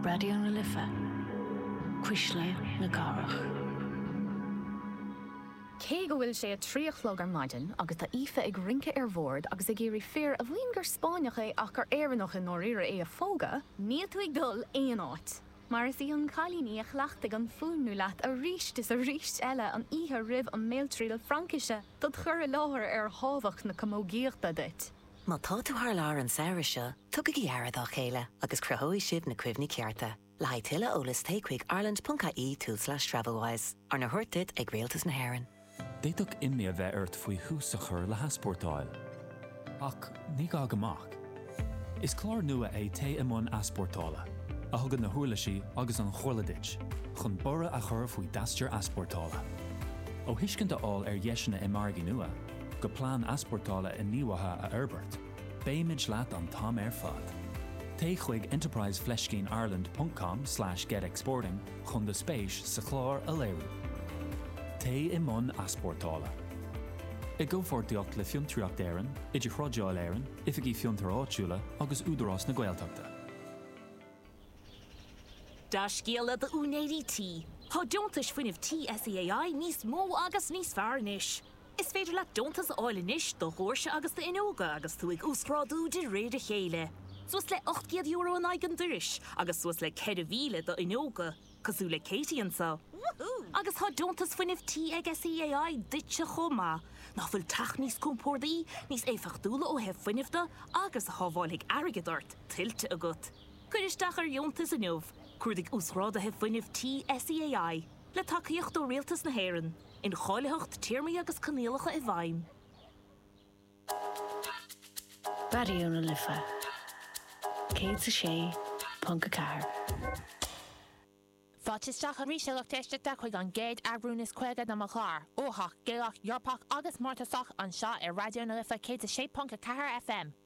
Raidió na Life, Cuisle na Cathrach. Cé go bhfuil sé a trí a chlog ar maidin agus tá Aoife ag rince ar bhord agus ag iarraidh fir a mhaíonn gur Spáinneach é ach gur Éireannach i ndáiríre é a phógadh, níl tú ag dul aon áit, mar is í an cailíní a chleachtaigh an fuaimniú leat arís is arís eile an oíche roimh an mbéaltriail Fraincise do do chur i láthair ar thábhacht na camógaíochta duit. Má tá tú thar lear an samhradh seo, tugaigí aire dá chéile agus cruthóidh sibh na cuimhní cearta. Le haghaidh tuilleadh eolais téigh chuig ireland.ie tulslais travelwise, arna thabhairt duit ag Rialtas na hÉireann. D'fhéadfadh imní a bheith ort faoi thús a chur le heaspórtáil. Ach ní gá go mbeadh. Is clár nua é Téigh i mbun Easpórtála, a thugann na huirlisí agus an chomhairle duit chun borradh a chur faoi d'aistear easpórtála. Ó thuiscint a fháil ar dheiseanna i margaí nua, go plean easpórtála inghníomhaithe a fhorbairt, beimid leat an t-am ar fad! Téigh chuig enterprise fleiscín ireland ponc com slash get exporting chun do spéis sa chlár a léiriú! Téigh i mbun easpórtála! I gcomhpháirtíocht le Fiontraíocht Éireann, Idirthrádáil Éireann, Oifigí Fiontair Áitiúla agus Údarás na Gaeltachta. Dea-scéala d'úinéirí tí, Tá Deontais Fuinnimh Tí SEAI níos mó agus níos fearr anois! Is féidir leat deontas a fháil anois do dhóirse agus do fhuinneoga agus tú ag uasghrádú de réir a chéile, suas le €800 in aghaidh an doiris agus suas le 4,000 do fhuinneoga, cosúil le Katie anseo. Woohoo! Agus tá Deontas Fuinnimh Tí ag SEAI duitse chomh maith. Nach bhfuil teach níos compórdaí, níos éifeachtúla ó thaobh fuinnimh de agus a shábháilfidh airgead ort, tuillte agat? Cuir isteach ar dheontas inniu, Cuardaigh Uasghráduithe Fuinnimh Tí SEAI. le tacaíocht ó Rialtas na hÉireann, incháilitheacht téarmaí agus coinníollacha i bhfeidhm. Raidió na Life 106.4. Fáilte isteach arís, a lucht éisteachta, chuig an gcéad eagrún is caoga de mo chlár, uathach, Gaelach, Eorpach agus Mórtasach, anseo ar Raidió na Life 106.4 FM.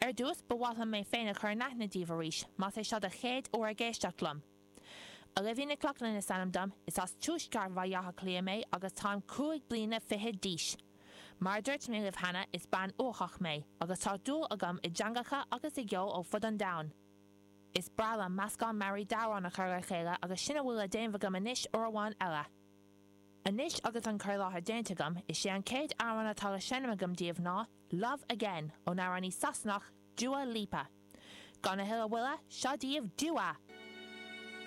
Ar dtús, ba mhaith liom mé féin a chur in aithne díbh arís, más é seo do chéad uair ag éisteacht liom. Olivia Nic Lochlainn is ainm dom, is as tuaisceart Bhaile Átha Cliath mé agus táim cúig bliana fichead d'aois. Mar a dúirt mé libh cheana, is bean uathach mé, agus tá dúil agam i dteangacha agus i gceol ó fud an domhain. Is breá liom meascán mearaí d'amhráin a chur le chéile agus sin a bhfuil le déanamh agam anois uair amháin eile. Anois agus an cur i láthair déanta agam, is é an chéad amhrán atá le seinm agam daoibh ná, Love Again ón amhránaí Sasanach Dua Lipa. Gan a thuilleadh moille, seo daoibh Dua!